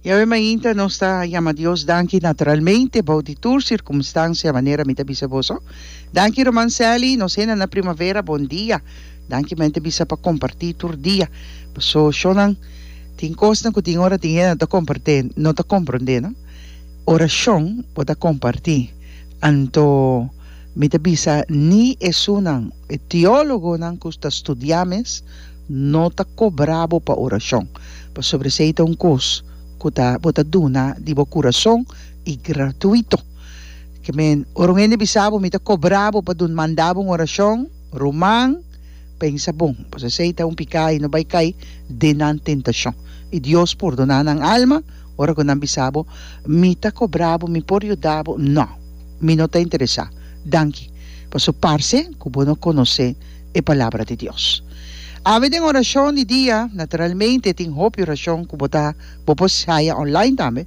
Yahweh mainta nos ta yama Dios danki naturalmente bou di tur circumstancia manera mi ta bisa boso. Danki Roman Sally, nos henda na primavera bon dia. Danki mente bisa pa comparti tur dia. Paso shonan tin cosnan cu tin ora tin henda no ta compart'e, no ta compronde no. Oracion bo ta comparti. Anto mi ta bisa ni esunnan, e teologonan cu ta studia mes, No ta cobra bo pa oracion, pasobra esey ta un cos cu ta bo ta duna di bo curason y gratuito. Ke men, ora un hende bisa bo, Mi ta cobra bo pa dun manda bo un oracion, ruman, pensa bon, pasobra esey ta un pica y no bay cay den nan tentacion. Y Dios pordona nan alma ora cu nan bisa bo, Mi ta cobra bo, Mi por yuda bo. No, mi no ta interesa. Danki, pasobra parce cu bo no conoce. e palabra di Dios. Ami den orashon di dia, naturalmente tin hopi orashon ku bo ta bo por haya online tambe,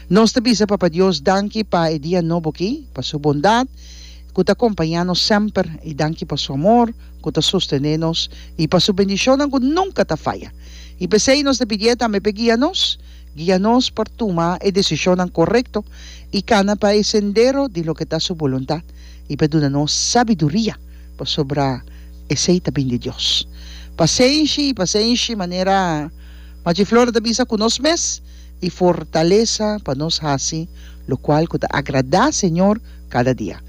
nos ta bisa Papa Dios danki pa e dia nobo aki, pa su bondat ku ta kompañá nos semper i danki pa su amor ku ta sostené nos i pa su bendishonnan ku nunka ta faya. I p'esei nos ta pidié tambe p'e guia nos, guia nos pa tuma e desishonnan korekto i kana pa e sendero di loke ta su boluntat i p'e duna nos sabiduria Pasobra esei ta bin di Dios. Pa senshi i pa senshi, manera Machi Flora ta bisa ku nos mes i fortalesa pa nos hasi lokual ku ta agradá Señor kada dia.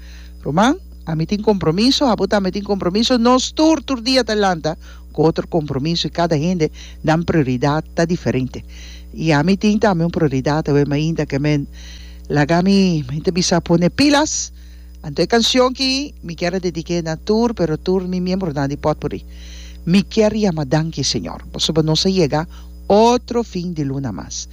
Ruman, ami tin kompromiso, abo tambe tin kompromiso, nos tur tur dia ta lanta ku otro kompromiso i kada hende nan prioridat ta diferente. I ami tin tambe un prioridat awe mainta ke men laga mi, mi ta bisa, pone pilas. Anto e canción ki mi kier a dediqué na tur pero tur mi miembronan di potpourri. Mi kier yama danki Señor, pasobra nos a yega otro fin di luna mas.